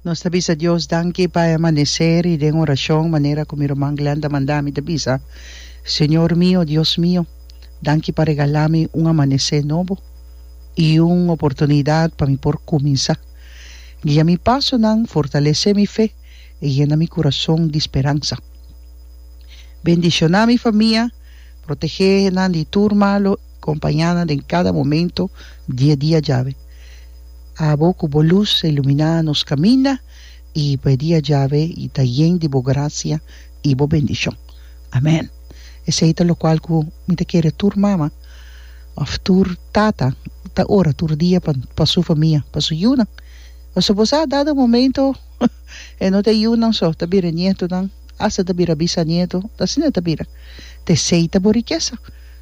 Nos ta bisa Dios danki pa e amanecer y den oracion manera cu mi ruman Glenn ta manda mi ta bisa, Señor mio, Dios mio, danki pa regala mi un amanecer nobo y un oportunidad pa mi por cuminsa. Guia mi pasonan, fortalece mi fe y yena mi curason di speransa. Bendiciona mi famia, protege nan di tur malo. Kompañánan den kada momento di e dia djawe. Abo ku bo lus a iluminá nos kaminda i pa e dia djawe i ta yen di bo grasia i bo bendishon. Amèn. Esei ta lokual ku mi ta kere tur mama òf tur tata ta ora tur dia pa pa su famia, pa su yunan. Pasobra bo sa dado momento e no ta yunan so ta bira e nietonan, asta ta bira bisanieto, asina ta bira. T'esei ta bo rikesa.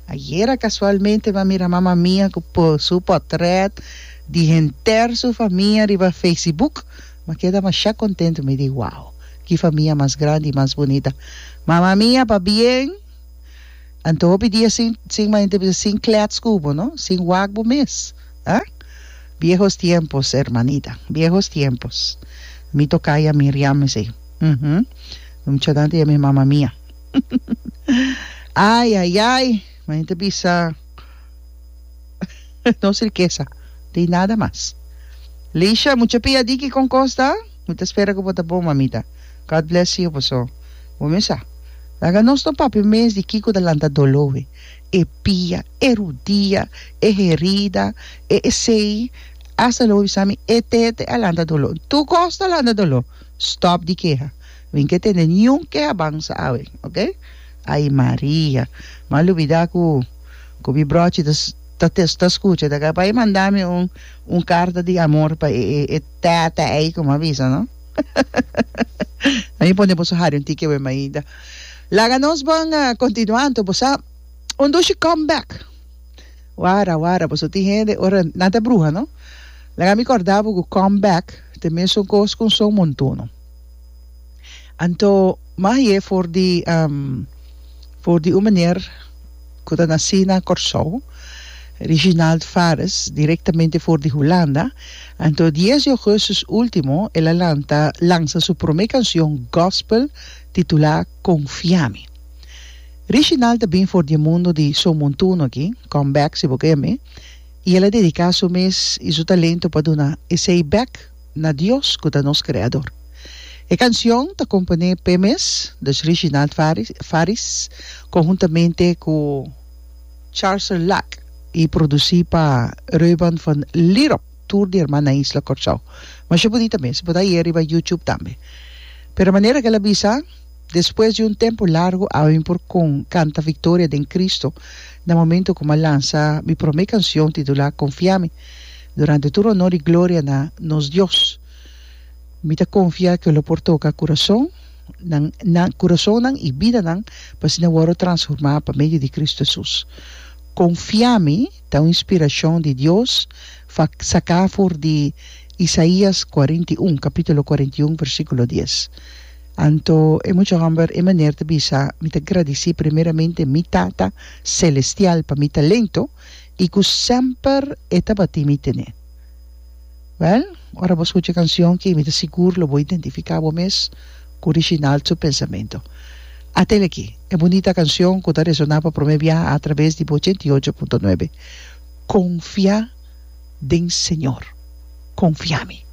Ayera casualmente mi a mira mama mia cu pon su potret di henter su famia riba feicibook. Mi a keda masha contento, mi di, Wow! Ki famia mas grandi y mas bunita! Mama mia pabien! Anto hopi dia sin, sin manda ta bisa, sin klets cu bo, no? Sin wak bo mes, ha? Viejos tiempos, hermanita, viejos tiempos! Mi tocaya Miriam esey. Uhm. Muchanan ta yama e mama mia. Ai ai ai ma enta bisa nos rikesa tin nada mas Lisha mucha pia diki kon kos ta mi ta spera ku bo ta bon mamita God bless you paso bo mi sa laga nos no papia mes di kiko ta lanta dolo e e pia e rudia e herida e esei asta lo bisa mi e tete a lanta dolo tur kos ta lanta dolo stop di keha Min ke tende niun keha bansa awe, ok. Ai Maria, mi a lubida ku ku mi brochi ta ta ta ta skucha ta ka bai manda mi un un karta di amor pa e e e tètè ei ku mi a bisa no. Ami pone boso hari un tiki awe mainta. Laga nos bon kontinua anto bo sa un dushi come back. Wara wara boso tin hende ora nan ta bruha no. Laga mi kòrda bo ku come back ta mesun kos ku un son montuno. Anto Maye for di for di un meneer cu ta naci na Corsou, Reginald Fares, directamente for di Hulanda. Anto dies di augustus ultimo el a lanta lansa su prome cancion gospel titula Confia mi. Reginald ta bin for di e mundo di So Montuno aki, Come Back si bo ka yam'e, y el a dedica su mes y su talento pa duna esey bek. na Dios ku ta nos Kreador. E kanshon ta komponé p'e mes durch Reginald Faris konhuntamente ku Charlser Lack i produsí pa Reuben van Lierop, tur di herman na isla Kòrsou. Masha bunita mes, e por ta hier'e riba YouTube tambe. Pero manera ku el a bisa, Despues di un tempu largu awe mi por kanta Victoria den Kristu na momentu ku mi a lansa mi promé kanshon titulá Konfiami. Durante tur honor i gloria na nos Dios. Mi ta konfia ke lo por toka kurason nan nan kurasonnan i bidanan pa asina wòrdu transformá pa medio di Kristu Hesus. Konfia mi ta un inspirashon di Dios fa saká for di Isaías kuarenta i un, kapítulo kuarenta i un, versíkulo dies. Anto e mucha hòmber e maner ta bisa, Mi ta gradisí primeramente mi Tata selestial pa mi talento, i ku semper e tabatin mi tene. Wèl, ora bo skucha e kanshon kei mi ta sigur lo bo identifiká bo mes ku Reginald su pensamentu. Atel aki, e bunita kanshon ku ta resoná pa promé biaha atraves di bo ochenta i ocho punto nuebe, Konfia den Señor, Konfia mi.